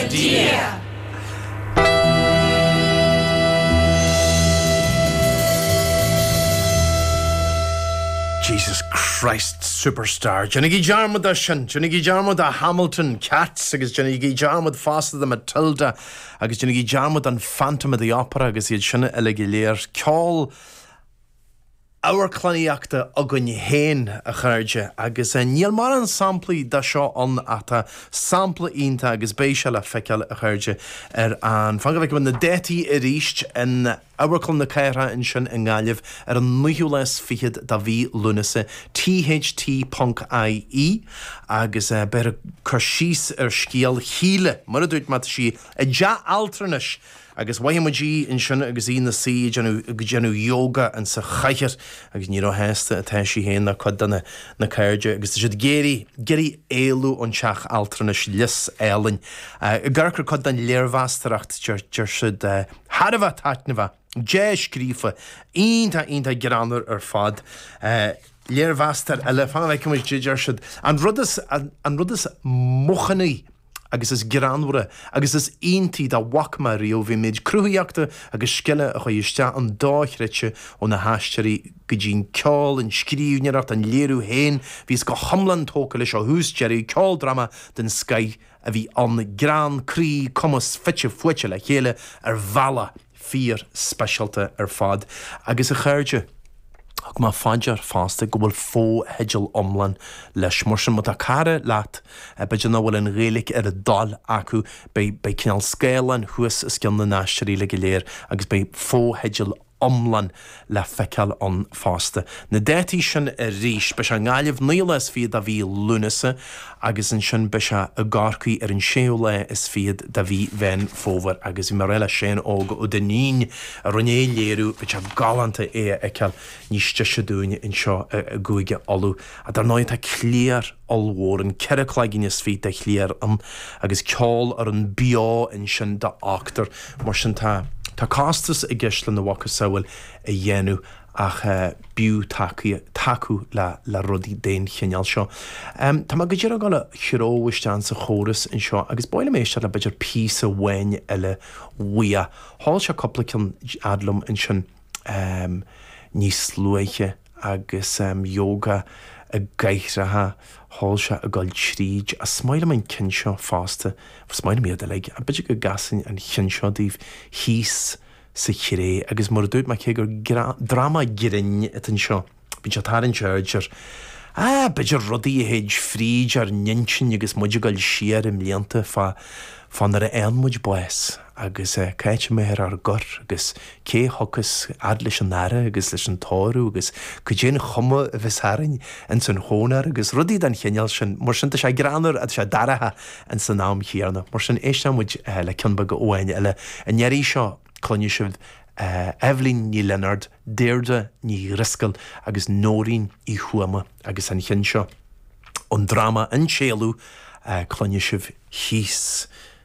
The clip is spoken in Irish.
Dia. Jesus Christ Superstar. Déanaigí dearmad de sin, déanaigí dearmad de Hamilton, Cats agus déanaigí dearmad fosta de Matilda agus déanaigí dearmad den Phantom of the Opera agus iad sin uilig go léir. Ceol amharclannaíochta againn féin, a chairde, agus níl mórán samplaí de seo ann ach tá sampla iontach, agus beidh sé le feiceáil, a chairde, ar an, fan go bhfeice mé na dátaí arís, in Amharclann na Cathrach ansin i nGaillimh ar an naoú lá is fichead de mhí Lúnasa, THT ponc IE, agus beidh cur síos ar scéal Shíle, mar a dúirt mé, tá sí i dteach altranais, Agus mhothaigh muid í ansin agus í ina suí ag déanamh yoga insa chathaoir agus ní róshásta atá sí féin ná cuid de na cairde agus tá siad ag iarraidh éalú ón teach altranais Lios Aoibhinn i gCorcaigh. Cuid den léirmheastóireacht, deir siad, thar a bheith taitneamhach, dea-scríofa, iontach, iontach greannmhar ar fad. Léirmheastóir eile, fan a bhfeicfidh muid, deir siad, an rud is maoithní, agus is greannmhara agus is iontaí dá bhfaca mé riamh an méid cruthaíochta agus scile a chuaigh isteach ann dáiríre ó na haisteoirí go dtí an ceol, an scríbhneoireacht, an léiriú féin. Bhíos go hiomlán tógtha leis ó thús deireadh, ceoldráma den scoith a bhí ann, greann, croí, cumas, fite fuaite le chéile ar bhealach. fíorspeisialta ar fad, agus a chairde. Thug mé fá dear fosta go bhfuil fotheidil iomlán leis, mar sin má tá cara leat, b'fhéidir nach bhfuil an Ghaeilic ar a dtoil acu, beidh beidh cineál scáileáin thuas os cionn na haisteoirí uilig go léir agus beidh fotheidil iomlán le feiceáil ann fosta. Na dátaí sin arís, beidh sé i nGaillimh naoú lá is fichead de mhí Lúnasa agus ansin beidh sé i gCorcaigh ar an séú lá is fichead de mhí Mheán Fómhair agus bhí mé ag rá le Seán Óg Ó Duinnín a rinne an léiriú, bheadh sé galánta é a fheiceáil níos deise dúinn anseo i gCúige Uladh. Dar ndóigh tá cliar ollmhór ann, ceithre cloigeann is fiche de chliar ann agus ceol ar an beo ansin d'ochtar. Mar sin tá tá costas i gceist lena mhacasamhail a dhéanamh ach b'fhiú tacaíocht, tacú le le rudaí den chineál seo. Tá mé go díreach ag gabháil a chur isteach sa chóras anseo agus ba mhaith liom éisteacht le b'fhéidir píosa amháin eile uaidh. Sheol sé cúpla ceann ar fad liom ansin níos luaithe. agus yoga i gcathracha ag dul tríd. Ach is maith liom an ceann seo fosta, is maith liom iad uilig, ach b'fhéidir go gcasfainn an ceann seo daoibh thíos sa chré? Agus mar a dúirt mé, cé gur dráma grinn atá anseo, bíonn sé ag tarraingt aird ar, á, b'fhéidir rudaí a théid fríd ár n-intinn agus muid ag dul siar i mblianta fá fá nuair a fhaigheann muid bás. agus caithfear muid a chur agus cé thiocfas fhad leis an aire agus leis an tórramh agus cad é an chuma a bheas orainn ins an chónair agus rudaí den chineál sin. Mar sin, tá sé greannmhar agus tá sé dáiríreach ins an am chéanna. Mar sin, éistfidh muid le ceann beag amháin eile. An iarraidh seo, cluinfidh sibh Eibhlín Ní Lionáird, Deirdre Ní Dhrisceoil agus Nóirín Uí Thuama agus an ceann seo, ón dráma An tÉalú, cluinfidh sibh thíos.